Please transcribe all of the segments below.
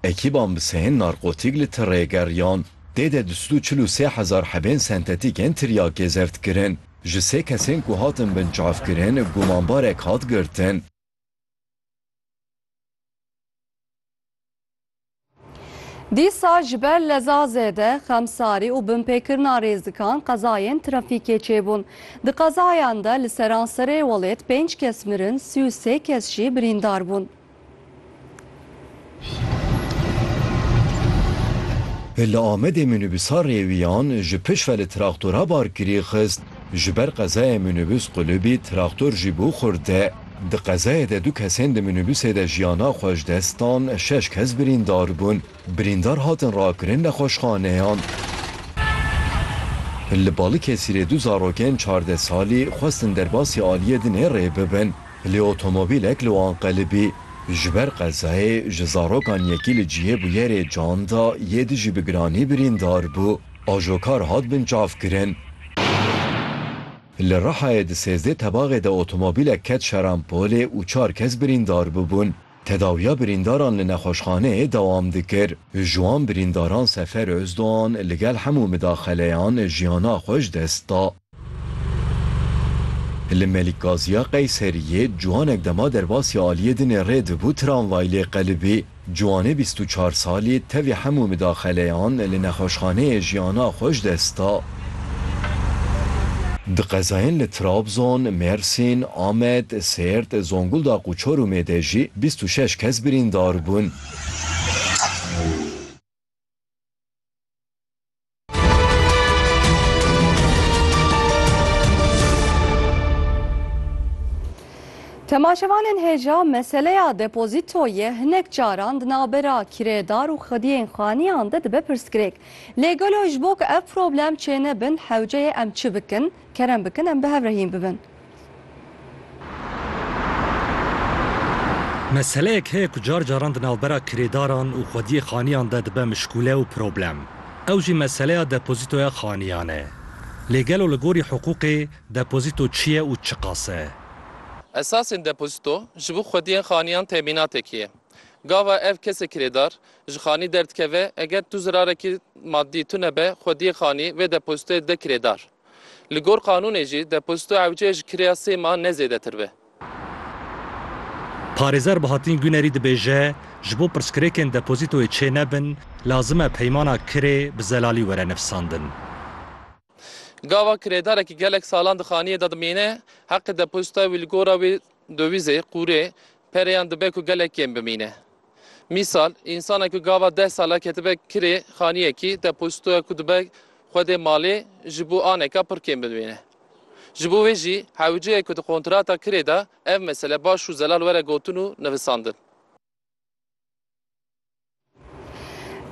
Ekîban bi sehên narkotîk li tirê geriyan. Tê de du sed û çil û sê hezar hebên sentetîk ên tiryakê zeft kirin. Ji sê kesên ku hatin binçavkirin gumanbarek hat girtin. Dîsa ji ber leza zêde, xemsarî û binpêkirina rêzikan qezayên trafîkê çêbûn. Di qezayan de li seranserê welêt pênc kes mirin, sî û sê kes jî birîndar bûn. Li Amedê mînîbûsa rêwiyan ji pişt ve li traktora barkirî xist. Ji ber qezayê mînîbûs qulibî traktor jî bû xurte. Di qezayê de du kesên di mînîbûsê de jiyana xwe ji dest dan, şeş kes birîndar bûn. Birîndar hatin rakirin nexweşxaneyan. Li Balikesirê du zarokên çardeh salî xwestin derbasî aliyê din ê rê bibin, lê otomobîlek li wan qelibî. Ji ber qezayê ji zarokan yekî li cihê bûyerê can da, yê di jî bi giranî birîndar bû. Ajokar hat binçavkirin. Li Rihayê di sêzdeh tebaxê de otomobîlek ket şerampolê û çar kes birîndar bibûn. Tedawiya birîndaran li nexweşxaneyê dewam dikir. Ji wan birîndaran Sefer Ozdoğan li gel hemû midaxeleyan jiyana xwe ji dest da. Li Melikgaziya Qeyseriyê ciwanek dema derbasî aliyê dinê rê dibû tramvay lê qelibî. Ciwanê bîst û çar salî tevî hemû midaxeleyan li nexweşxaneyê jiyana xwe ji dest da. Di qezayên li Trabzon, Mêrsîn, Amed, Sêrt, Zonguldaq û Çorumê de jî bîst û şeş kes birîndar bûn. Temaşevanên hêja meseleya depozîtoyê hinek caran di navbera kirêdar û xwediyên xaniyan de dibe pirsgirêk. Lê gelo ji bo ku ev problem çênebin hewce ye em çi bikin? Kerem bikin em bi hev re hîn bibin. Meseleyek heye ku car caran di navbera kirêdaran û xwediyê xaniyan de dibe mişkûle û problem. Ew jî meseleya depozîtoya xaniyan e. Lê gelo li gorî hiqûqê depozîto çi ye û çiqas e? Esasên depozîto ji bo xwediyên xaniyan temînatekî ye. Gava ev kesê kirêdar Ji xanî derdikeve, eger tu zirarekî madî tune be, xwediyê xanî vê depozîtoyê dide kirêdar. Li gor qanûnê jî depozîto ewcê ji kirêya sê man ne zêdetir be. Parêzer Bahattin Gunerî dibêje, ji bo pirsgirêkên depozîtoyê çênebin, lazim e peymana kirê bi zelalî were nivîsandin. Gava kirêdarekî gelek salan di xaniyê de dimîne, heqê depozîtoya wî li gora wê dowîzê, qûrê, perê yan dibe ku gelek kêm bimîne. Mîsal, însanek ku gava deh sal e ketibe kirê xaniyekî, depozîto ye ku dibe Xwedê malê ji bo aneka pir kêm binivîne. Ji bo wê jî hewceyê ku di kontrata kirê de ev mesele baş û zelal were gotin û nivisandin.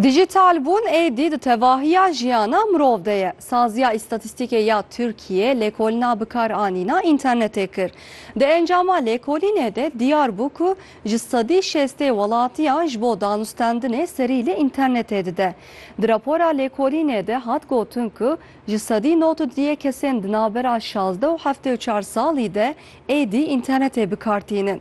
Dîjîtalbûn êdî di tevahiya jiyana mirov de ye. Saziya Îstatîstîkê ya Tirkiyê lêkolina bikaranîna înternetê kir. Di encama lêkolînê de diyar bû ku Ji sedî şêstê welatiyan ji bo danûstendinê serî li înternetê dide. Di rapora lêkolînê de hat gotin ku ji sedî nod û duyê kesên di navbera şazdeh û heftê û çar salî de êdî înternetê bi kar tînin.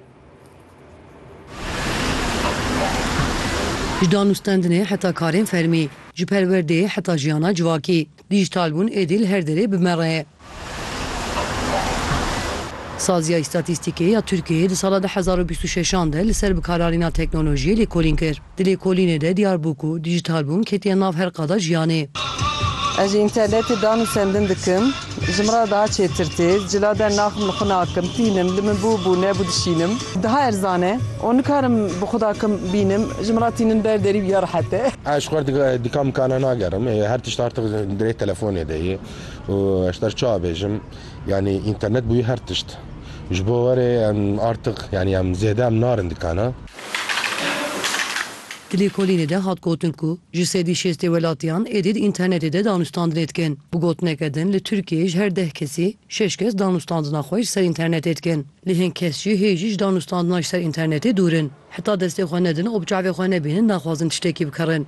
Ji danûstendinê heta karên fermî, ji perwerdeyê heta jiyana civakî, dîjitalbûn êdî li her derê bi me re ye. Saziya Îstatîstîkê ya Tirkiyeyê di sala du hezar û bîst û şeş an de li ser bikararîna teknolojiyê lêkolîn kir. Di lêkolînê de diyar bû ku dîjîtalbûn ketiye nav her qada jiyanê. Ez ji înternetê dan û sendin dikim. Ji min re daha çêtir tê. Cilader naxim li xwe nakim, tînim, li min bû bû, nebû dişînim. Daha erzan e û nikarim bi xwe dakim bînim. Ji min re tînin ber derî ya rehet e. Ez ji xwe re dika mikana nagerim. Her tişt artiq di rê telefonê de ye. Û ez ji te re çawa bêjim yanî înternet bûye her tişt. Ji bo werê em artiq yanî em zêde em narin dikana. Di lêkolînê de hat gotin ku ji sedî şêstê welatiyan êdî di înternetê de danûstandinê dikin. Bi gotineke din li Tirkiyeyê ji her deh kesî şeş kes danûstandina xwe ji ser înternetê dikin. Lê hin kes jî hê jî ji danûstandina ji ser înternetê dûr in. Heta destê xwe nedin û bi çavê xwe nebînin naxwazin tiştekî bikarin.